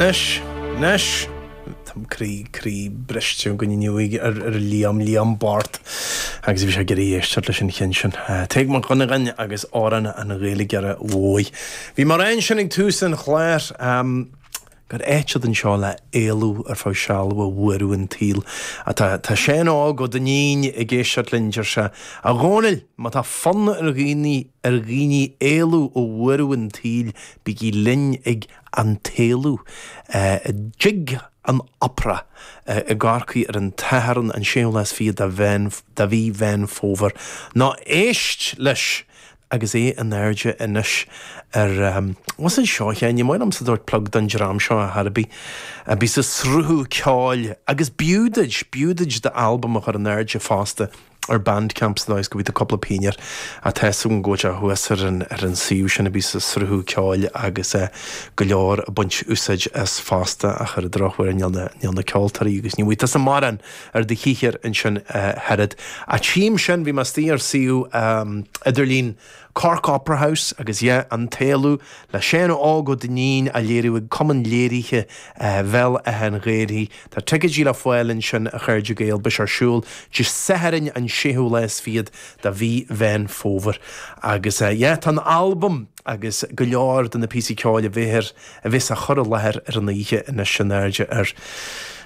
Anois, anois, tá mo chroí, croí briste againn inniu ag, ar, ar Liam, Liam Bart, agus bhí sé ag iarraidh éisteacht leis an cheann sin. Tadhg Mac Dhonnagáin agus Amhrán an Ghaeilgeora Mhóir. Bhí mé ag rá ansin ag tús an chláir, gur áit atá anseo le éalú ar feadh seal ó bhuaireamh an tsaoil. Á tá, tá Séan Óg Ó Duinnín ag éisteacht linn, deir sé, A Dhónaill, má tá fonn ar dhaoine, Ar dhaoine éalú ó bhuaireamh an tsaoil, bígí linn ag An tÉalú i dTigh an Opera i gCorcaigh ar an tSatharn an 26ú lá de mhí Mheán Fómhair. Ná éist leis! Agus é in airde anois ar What's an seó cheoil? Ní maith liomsa tabhairt plug don dream seo ar chor ar bith, a bíos ag sruthú ceoil! Agus b'fhiú duit, b'fhiú duit d'albam a chur in airde fosta. ar Bandcamp sa dóigh is go bhfaighfeá cúpla pingin air. Ach tá fhios agam go bhfuil sé thuas ar an, ar an suíomh sin a bíos ag sruthú ceoil agus eh, go leor ag baint úsáid as fosta, ach ar an drochuair níl na, níl na ceoltóirí agus ní bhfaighidh tusa mórán ar do shaothar ansin ach oiread. Ach tchím ansin bhí mé istigh ar suíomh eh, idirlín. Cork Opera House agus eh An tÉalú le Séan Óg Ó Duinnín á léiriú ag Cumann Léirithe Bhéal Átha an Ghaorthaidh. Tá ticéidí le fáil ansin a chairde Gael beidh sé ar siúl Dé Sathairn an 6ú lá is fichead de mhí Mheán Fómhair. Agus eh tá an t-albam agus go leor de na píosaí ceoil a bheidh ar a bheas á chur i láthair ar an oíche anois in airde ar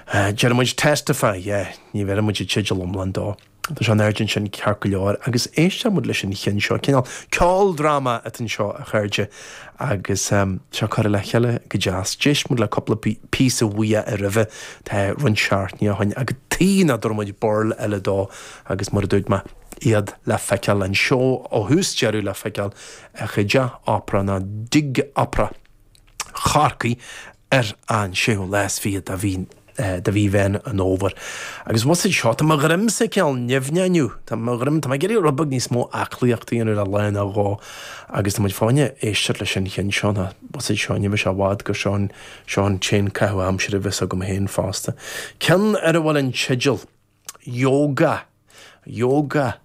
Deir muid Testify, eh ní bheireann muid an teideal iomlán dó. Tá sé in airde ansin ceart go leor, agus éistfidh muid leis an chinn seo. Cineál ceoldráma atá anseo, a chairde, agus seo curtha le chéile go deas. D'éist muid le cúpla píosa uaidh roimhe, tá roinnt seachtainí ó shin, agus tuige nach dtabharfadh muid burl eile dó, agus mar a dúirt mé, iad le feiceáil, an seó ó thús deireadh le feiceáil, istigh i dTeach Opera, nó i dTigh Opera. Chorcaí ar an séú lá is fiche de mhí de mhí Mheán an Fhómhair. Agus abhus anseo, tá mo dhroimse cineál nimhneach inniu. Tá mo dhroim, tá mé ag iarraidh rud beag níos mó aclaíochta a dhéanamh le lá nó dhó. Agus tá muid fáinne éisteacht leis an chinn seo atá abhus anseo ní bheidh sé i bhfad gur seo an seo an t-aon caitheamh aimsire a bheas agam féin fosta. Ceann ar a bhfuil an teideal. Yoga, Yoga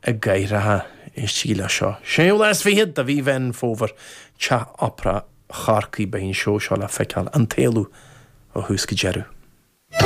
i gCathaoireacha, éistigí leis seo. Séú lá is fichead de mhí Mheán Fómhair, Teach Opera Chorcaí, beidh an seó seo le feiceáil An tÉalú ó thús go deireadh.